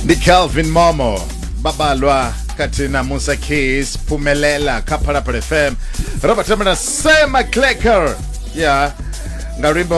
ndi calvin momo babalwa kati na musa keys phumelela kha phalaphala fm ro batamela sema clacker ya nga luimbo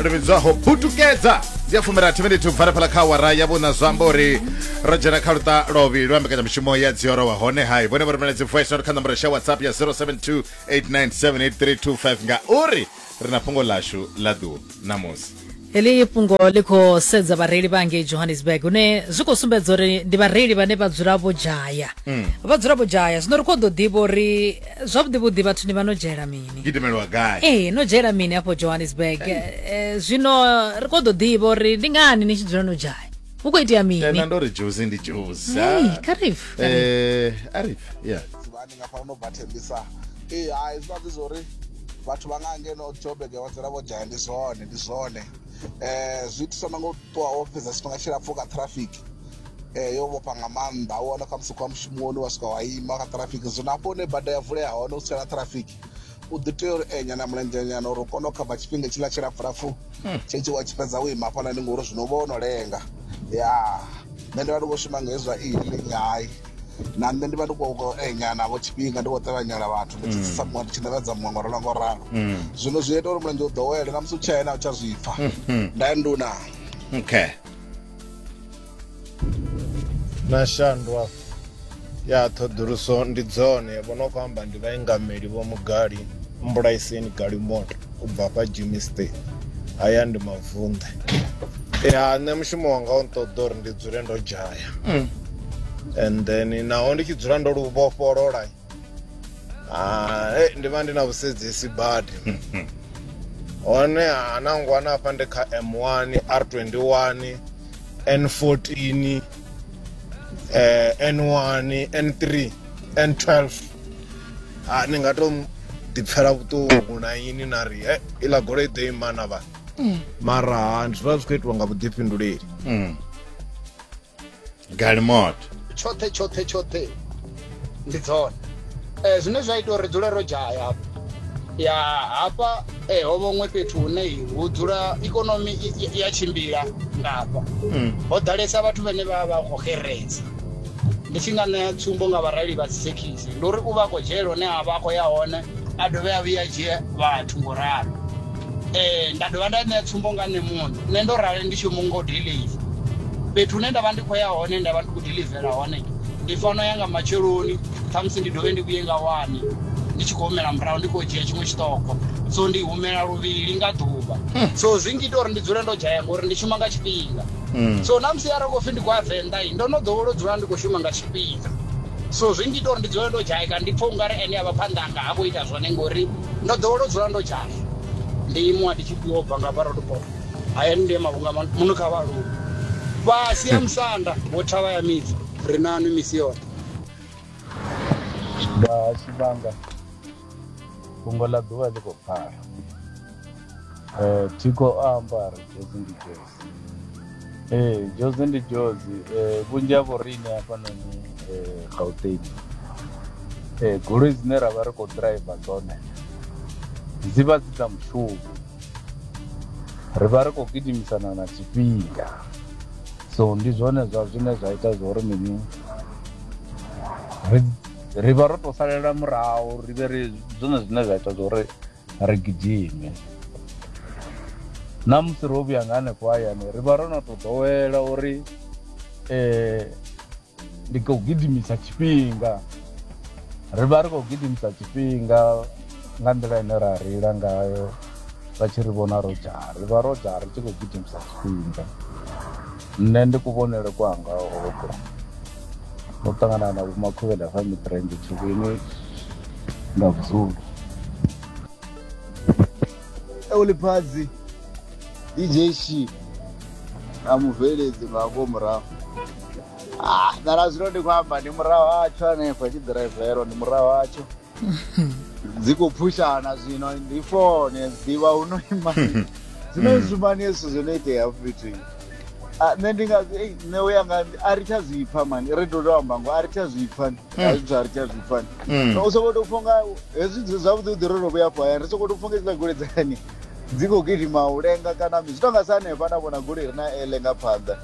lu vhidzwaho butukedza ndi a fumirathi miniti ubva phala kha wara ya vhuna zwa amba uri ro dzhena kha luṱa lovhi lwa mbekanyamushumo ya dzioro wa hone hai vhone vho rumela dzi voice note kha nomboro sha whatsapp ya 072 8978 325 nga uri ri na fhungo ḽashu ḽa ḓuvha ṋamusi heḽi fhungo ḽi khou sedza vhareili vha ngei johannesburg hune zwi khou sumbedza uri ndi vhareili vhane vha dzula vho dzhaya mm. vha dzula vho dzhaya zwino ri khou ḓo ḓivha uri zwavhuḓivhuḓi vhathuni vha no dzhayela mini gidimelwa gai ee no dzhayela mini afho johannesburg eh, eh, zwino ri khou ḓo ḓivha uri ndi ngani ni tshi dzula no dzhaya hu khou itea mini tena ndo ri juzi ndi juzi karif eh, arif ya ndi nga fana no bathembisa ee hai zwi vha zwi zwo ri vhathu vha nga ngeno joburg vha dzula vho dzhaya ndi zwone ndi zwone um zwi itiswa na ngo ṱuwa wo fhedza tshifhinga tshilapfhu kha traffic um yo vhofha nga maanḓa u wana khamusi khou ya mushumoni wa swika wa ima kha traffic zwino hafho hune bada ya vulea hone u tsela traffic u ḓi tea uri enya na mulendzhenyana uri u kone u khava tshifhinga tshiḽa tshilapfulapfu tshetsho wa tshi fhedza wo ima hafhaḽani ngori zwino u vha wo no lenga ya nṋe ndi vha ndi khou shuma nga hezwa e-hailing hai na nṋe ndi vha ndi khou enya navho tshifhinga ndi khou ṱavhanyela vhathu ndi tshi tsisa muṅwe ndi tshi ṋevhedza muṅwe ngo ralo ngo ralo zwino zwi ita uri mulenzhe u ḓowele na musi u tshaena u tsha zwi pfa nda nduna okay na shandwa ya ṱhoḓuluso ndi dzone vho no khou amba ndi vhaingameli vho mugali mbulaiseni galimoto u bva hafha jimmy state haya ndi mavunḓe ya nṋe mushumo wanga u nṱoḓa uri ndi dzule ndo dzhaya mm. and then naho ndi tshi dzula ndo lu vhofholola ah, hey, ndi vha ndi na vhusidzisi badi hone hanangwana hafha ndi kha m1 r21 n14 eh, n1 n3 n12 ah, ni nga to ḓipfela vhuṱungu na ini na ri eh, iḽa goloi ḓo imana vha mm. mara ndi zwivha zwi khou itiwa nga vhuḓifhinduleli mm. galimot tshoṱhe tshoṱhe tshoṱhe ndi dzone um zwine zwa ita uri dzule ro dzhaya hafha ya hafha um ho vhoṅwe fhethu hune hu dzula ikonomi ya tshimbila nga hafha mm. ho ḓalesa vhathu vhane vha vha khou xereza ndi tshi nga ṋea tsumbo nga vhareili vha dzithekhisi ndi uri u vha khou dzhela hone a vha a khou ya hone a dovhe a vhuya dzhie vhathu ngo ralo ee nda dovha nda ṋea tsumbo nga nṋe muṋe nṋe ndo rali ndi tshi mu ngo deliva fhethu hune nda vha ndi khou ya hone nda vha ndi khou delivela hone ndi fano ya nga matsheloni khamusi ndi dovhe ndi vhuye nga wani ndi tshi khou humela murahu ndi khou dzhia tshiṅwe tshiṱoko so ndi humela luvhili nga ḓuvha so zwi ngita uri ndi dzule ndo dzhaya ngori ndi shuma nga tshifhinga so na musi arali khou pfi ndi khou ya venḓa i ndo no ḓowela u dzula ndi khou shuma nga tshifhinga so zwi ngita uri ndi dzule ndo dzhaya kana ndi pfha ungari ene a vha phanḓa anga ha khou ita zwone ngori ndo ḓowela u dzula ndo dzhaya ndi imuwa ndi tshi fhiwa bva nga vhara lupo haya ni ndema vhunga muno kha vha lupo fhasi ya musanda wo thavha ya midzi ri nanu misi yoṱhe nga tshivhanga fhungo ḽa ḓuvha ḽi khou pfala um thiko a amba ri fhedzi ndi fhedzi Ee, dzhozi ndi dzhozi Eh, vhunzhi ha vhoriṋe hafhanoni eh, gauteng Eh, goloi dzine ra vha ri khou ḓiraiva dzone dzi vha dzi dza mushumo ri vha ri khou gidimisana na tshifhinga so ndi zwone zwa zwine zwa ita zwori mini ri- ri vha ro tou salela murahu ri vhe ri zwone zwine zwa ita zwori ri gidime na musi ro vhuya nga hanefho hayani ri vha ro no to ḓowela uri um ndi khou gidimisa tshifhinga ri vha ri khou gidimisa tshifhinga nga nḓila ine ra reila ngayo vha tshi ri vhona ro dzhara ri vha ro dzhara ri tshi khou gidimisa tshifhinga nṋe ndi kuvhonele kwanga hoṱhe ndo ṱangana na vhomakhuvhela fa mitrenge tshivhini nga vuzulu euliphadzi dj shi na mubveledzi nga vho murahu ah, nana zwino ndi khou amba ndi murahu hatsho hanefho tshi ḓiraivelwa ndi murahu hatsho dzi khou phushana zwino ndi fone ḓivha hu no ima zwino mm. zwimani hezwi zwithu zwo no itea fhethu ah, nṋe ndi nga nṋe u ya nga a ri tsha zwi pfha mani ri ḓo tou amba ngo a ri tsha zwi pfha mm. a zwithu a ri tsha zwi pfha mm. u sokou tou pfha nga hezwi zwavhuḓi vhuḓi ro tou vhuya afho hayani ri sokou tou pfha nga hezwiḽa goloi dzani dzi khou gidima u lenga kana mi zwi tou nga sa hanefha na vhona goloi ri na ele nga phanḓa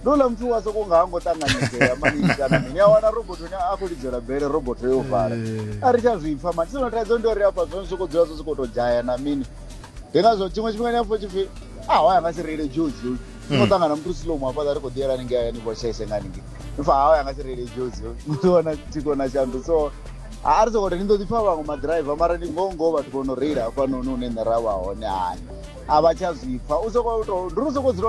ndo ḽa muthu wa soko nga ha ngo ṱanganyedzea mani kana mini a wana robot ne a khou lidzela bele robot yo vala eh. a ri tsha zwi pfha mani sino thaidzo ndi uri afha zwo ni sokou dzula zwo sokou tou dzhaya na mini ndi ngazwo tshiṅwe tshifhinga ni afho tshi pfhi a ah, hoya nga si reile jozi ni khou ṱangana muthu silomu hafhaḽa ri khou ḓiyela ningei hayani vho tshaise nga ningei ni pfha hoya nga si reile jozi muthu wana thiko na shandu so a ri sokoto ni ḓo ḓi pfha vhaṅwe maḓiraiva mara ndi ngoho ngoho vhathu vho no reila hafhanoni hune nṋe ra vha hone hani a vha tsha zwi pfha u sokoto ndi ri u sokou dzula